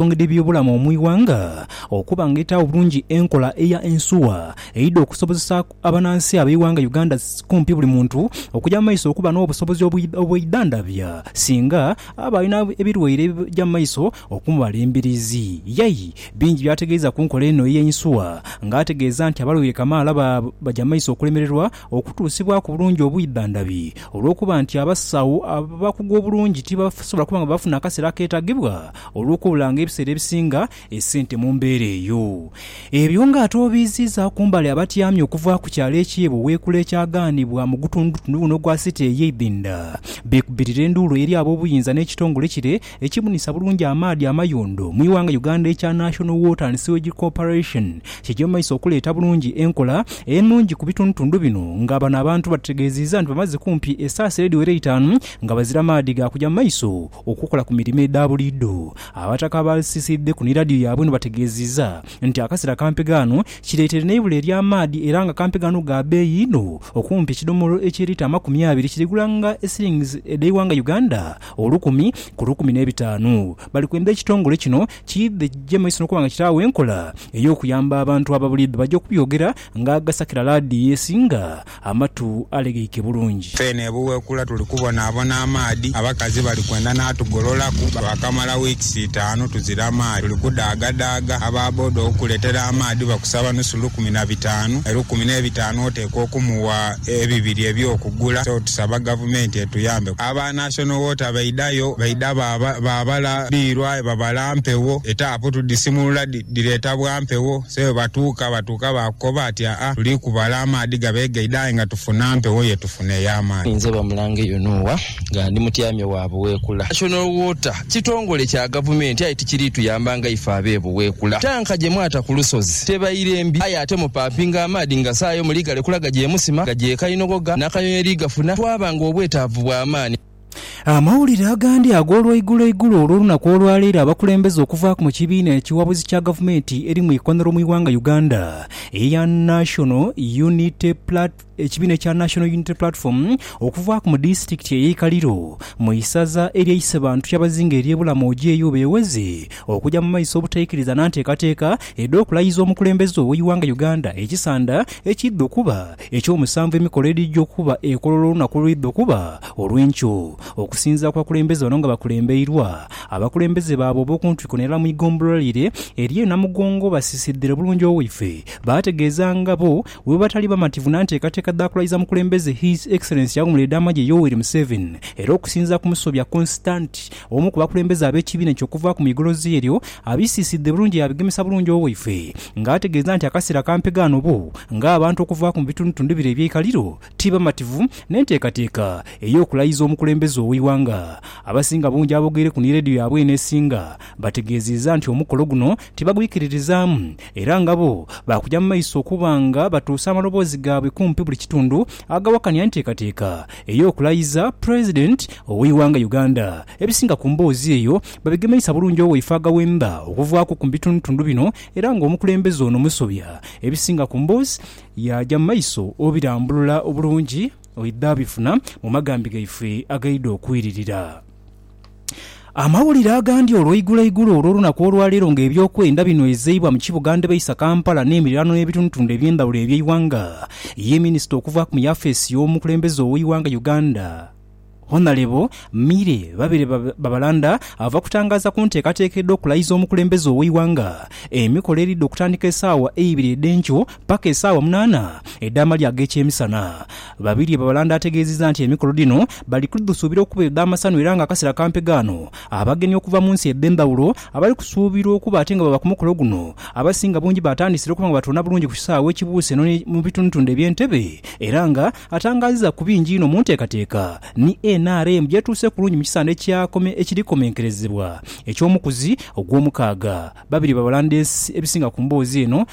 ensonga edh'ebyobulamu mu ighanga okuba nga etaagho bulungi enkola eya Ensuwa eidha okusobozesa abanansi ab'eighanga Uganda kumpi buli muntu okuja mu maiso okuba n'obusobozi obweidhandhabya singa aba alina ebilwaire ebija mu maiso okumubala embiriizi. Yay bingi by'ategeeza ku nkola eno ey'Ensuwa nga ategeeza nti abalwaire kamaala baja mu maiso okulemererwa Okutuusibwaku bulungi obwidha ndhabi olw'okuba nti abasawo abakugu obulungi tibasobola kuba nga bafuna akaseera akeetagibwa olw'okubulanga ebiseera ebisinga esente mu mbeera eyo. Ebyo ng'ate obiiziiza ku mbali abatyami okuva ku kyalo eky'e Buweekula ekyagaanibwa mu gutundutundu guno ogwa City ey'eidhinda beekubirire enduulu eri ab'obuyinza n'ekitongole kire Ekibunisa bulungi amaadhi amayondo mu ighanga Uganda ekya National Water and Sewage Corporation kigya mu maiso okuleeta bulungi enkola enungi ku bitundutundu bino nga bano abantu batutegeeziiza nti bamaze kumpi esaasi edhiwera eitaanu nga bazira maadhi ga kugya mu maiso okukola ku mirimo edha buliidho. Abataka abaasisiidheku ni Radio yaabwe eno bategeeziiza nti akasera kampi ghano kireeteire n'eibula ery'amaadhi era nga kampi ghano ga beeyi inho okumpi ekidomolo ekya lita amakumi abiri kirigula nga e shillings edh'eighanga Uganda Olukumi ku lukumi n'ebitaanu. Bali kwenda ekitongole kino kiidhe kigye mu maiso n'okuba nga kitaagho enkola ey'okuyamba abantu aba buliidho baja okubyogera nga agasakira laadiyo esinga amatu alegeike bulungi. Feene e Buwekula tuli kubonaabona amaadhi. Abakazi bali kwenda n'atugololaku. Twakamala wiikisi itaanu tuzira maadhi. Tuli kudaagadaagha. Aba boda okukuleetera amaadhi bakusaba nusu lukumi na bitaanu. Elukumi n'ebitaanu oteekwa okumuwa ebibiri eby'okugula. So tusaba Gavumenti etuyambe. Aba National Water baidhayo baidha baabala dhiirwa ebabala mpegho, etaapu tudhisimulula dhireeta bwa mpegho. So bwe batuuka batuuka baakukoba ati, Aa, tuli kubala amaadhi gabe gaidha aye nga tufuna mpegho ye tufuna ey'amaani. Ninze Bamulange Yonoah nga ndi mutyamye wa Buweekula National Water. Kitongole kya gavumenti aye tikiriituyamba nga ife ab'ebuweekula. Ttanka gye mwata ku lusozi tebaire mbi aye ate mupampinga amaadhi nga saayo muli galekula gagyemusima gagyekainogoga n'akanyonyi erigafuna twaba ng'obwetaavu bwa maani. Amawulire agandi ag'olwaiguloigulo olw'olunaku olwaleero abakulembeze okuva mu kibiina ekiwabuzi kya gavumenti eri mu ikonero mu ighanga Uganda eya National Unity Platform, Ekibiina ekya National Unity Platform okuvaaku mu disitulikiti eye Ikaliro mu isaza erye Isebantu kyabazinga erye Bulamu ojeeyo beeweze okuja mu maiso obutaikiriza na nteekateeka edhokulayiza omukulembeze owe Iwanga Uganda ekisanda ekidha okuba ekyomusanvu emikolo edhija okuba ekololo olunaku olwidha okuba olwenkyo okusinzira kubakulembeze bano nga bakulembeirwa abakulembeze baabwe obokuntiko nelala mu igombolola lire erye Namugongo basisidhire bulungi owaife baategeeza nga bo Bwebatali bamativu na nteekateeka dha kulaiza mukulembeze His Excellency aghumula edh'amagye Yoweri Museveni era okusinzira ku Musobya Constant omu ku bakulembeze ab'ekibiina ekyo okuvaaku mu igolozi eryo abisiisidhe bulungi yaabigemesa bulungi owaife nga ategeeza nti akaseera ka mpegaano bo nga abantu okuvaaku mu bitundutundu bire eby'eikaliro ti bamativu n'enteekateeka ey'okulaiza omukulembeze ow'eighanga. Abasinga bungi aboogeireku ni leediyo yaabwe eno esinga bategeeziiza nti omukolo guno tibagwikiririzaamu Era nga bo baakuja mu maiso okuba nga batuusa amaloboozi gaabwe kumpi buli kitundu agawakanya enteekateeka ey'okulayiza President ow'eighanga Uganda, ebisinga ku mboozi eyo babigemeisa bulungi owaife agaghemba okuvaaku ku bitundutundu bino era nga omukulembeze ono musobya ebisinga ku mboozi yaaja mu maiso obirambulula obulungi oidha bifuna mu magambi gaife agaidha okwiririra. Amawulire agandi olweiguloigulo olw'olunaku olwaleero nga ebyokwenda binhwezeibwa mu kibuga ndhebaisa Kampala n'emiriraano n'ebitundutundu eby'endhawulo eby'eighanga, ye minisita okuvaaku mu yafeesi y'omukulembeze ow'eighanga Uganda Honalebo Milly Babirye Babalanda ava kutangaaza ku nteekateeka edh'okulayiza omukulembeze ow'eighanga emikolo eridha okutandika esaawa eibiri edh'enkyo paka esaawa munaana edh'amalya ag'ekyemisana. Babirye Babalanda ategeezizza nti emikolo dhino bali kudhusuubira okuba edh'amasanhu era nga akaseera kampe ghano abagenyi okuva mu nsi edh'endhawulo abali kusuubirwa okuba ate nga baba ku mukolo guno abasinga bungi baatandisire okuba nga batoona bulungi ku kisaawe ekibuuse eno mu bitundutundu eby'e Ntebe era nga atangaazizza ku bingi inho mu nteekateeka ni nrm gyetuuse kulungi mu kisande ekiri komenkerezebwa eky'omukuzi ogw'omukaaga. Babirye Babalanda ebisinga ku mboozi eno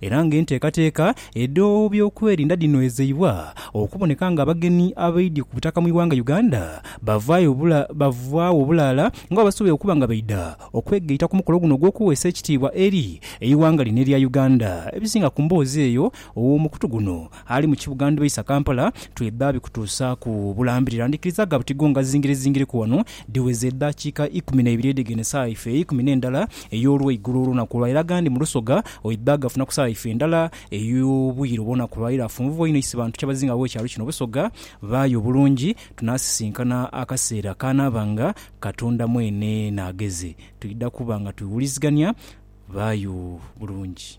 era nga enteekateeka edh'obyokwerinda dhinoezeibwa okuboneka nga abagenyi abaidye ku butaka mu ighanga Uganda bavaayo bulaala nga bwebasobola okuba nga baidha okwegaita ku mukolo guno ogw'okuweesa ekitiibwa eri eighanga lino erya Uganda. Ebisinga ku mboozi eyo ow'omukutu guno Ali mu kibuga ndhibaisa Kampala twidha bikutuusaaku bulambirira. Ndhikirizaaga buti gonga zingirizingiriku wano dhiweze edhakiika ikumi na ibiri edh'egene saagha ife eikumi n'endala ey'olweigulo olunaku olwa ira agandi mu Lusoga oidha gafuna ku saagha ife endala ey'obwire obw'onaku lwa ira. Funvubwa inho isi bantu kyabazinga ab'ekyalo kino Busoga baaya obulungi tunaasisinkana akaseera k'anaaba nga Katonda mwene n'agheze. Twidha kuba nga twewulizigania. Baayo bulungi.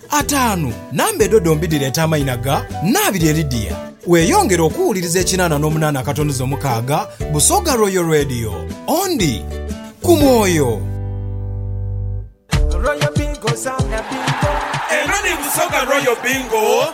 Ataanu, namba edho dhombi dhireeta amaina ga Nnaabirye Lydia. Weeyongere okuwuliriza ekinaana n'omunaana akatonuza omukaaga Busoga Royal Radio. Ondi ku mwoyo. Eno ni Busoga Royal Bingo.